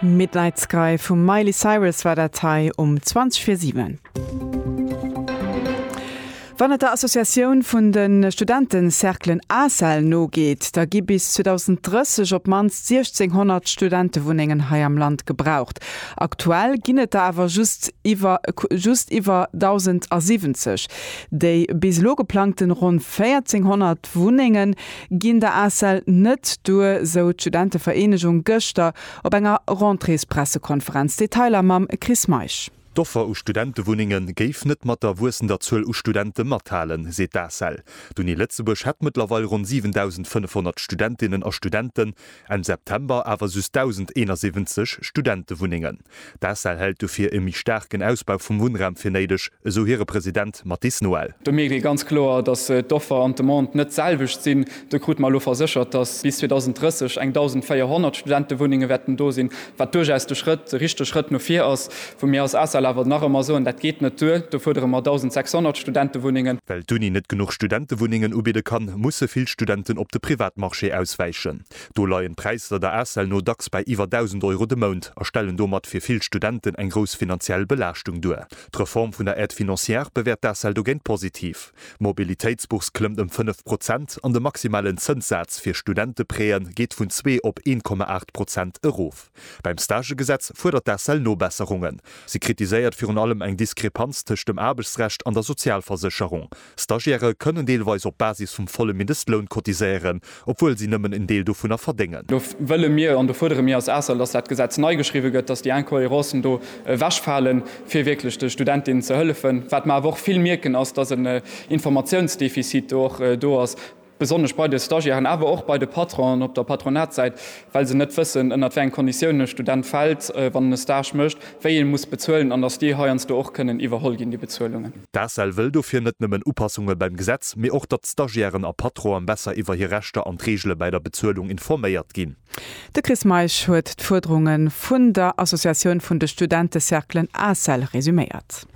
Midnight Sky vum Miley Cyrus war dat hei um 20 fir 7. Wann et der Associatioun vun de Studentencerclen ACEL nogeet, da gi bis 2030 op d'mannst 1.600 Studentewunnengen hei am Land gebraucht. Aktuell ginn et der awer just iwwer just iwwer 1.070. Déi bis elo geplangten ronn 1.400 D'Wunnenge ginn der ACEL net duer, sou d'Studentevereenegung gëschter op enger Rentréespressekonferenz. Detailer mam Chris Meisch. D'Offer u Studentewunnenge géif net mat der wuessender Zuel u Studente mathalen, seet d'ACEL. D'Uni Lëtzebuerg hätt mëttlerweil ronn 7.500 Studentinnen a Studenten, Enn September awer just 1.071 Studentewunnengen. D'ACEL hält dofir e méi staarken Ausbau vum Wunnraum fir néideg, esou hire President Mathis Noël. Do mierkt ee ganz kloer, datt d'Offer an d'Demande net d'selwecht sinn. Do krute mer elo verséchert, datt bis 2030 eng 1.400 Studentewunnenge wäerten do sinn, wat duerchaus de Schrëtt, de richtege Schrëtt no vir ass. Wou mir als ACEL awer nach ëmmer soen, dat geet net duer, do fuerdere mer 1.600 Studentewunnengen. Well d'Uni net genuch Studentewunnengen ubidde kann, musse vill Studenten op de Privatmarché auswäichen. Do leien d'Präisser der ACEL no dacks bei iwwer 1.000 Euro de Mount a stellen domat fir vill Studenten eng grouss finanziell Belaaschtung duer. D'Reform vun der Aide financière bewäert d'ACEL dogéint positiv. D'Mobilitéitsbourse klëmmt ëm 5 Prozent an de maximalen Zënssaz fir Studenteprêtë geet vun zwee op 1,8 Prozent erof. Beim Stagegesetz fuerdert d'ACEL Nobesserungen. Si kritiséiert virun allem eng Diskrepanz tëscht dem Aarbechtsrecht an der Sozialversécherung. Stagiairë kënnen deelweis op Basis vum volle Mindestloun cotiséieren, obwuel si nëmmen en Deel dovunner verdéngen. Do wëlle mir an do fuerdere mir als ACEL, dass dat Gesetz nei geschriwwe gëtt, dass déi Incohérencen do ewechfalen, fir wierklech de Studentinnen ze hëllefen. Wat mer awer och vill mierken, ass, dass en Informatiounsdefizit do och do ass. besonnesch bei de Stagiairen, awer och bei de Patronen op der Patronatssäit, well se net wëssen, ënnert wéi eng Konditiounen e Student fält, wann en e Stage mécht, wéi ee muss bezuelen an datt déi heiansdo och kënnen iwwerholl ginn, déi Bezuelungen. D'ACEL wëll dofir net nëmmen Upassunge beim Gesetz, mee och, datt d'Stagiairen a Patronen besser iwwer hir Rechter an d'Reegele bäi der Bezuelung informéiert ginn. De Chris Meisch huet d'Fuerderunge vun der Associatioun vun de Studentecerclen ACEL resuméiert.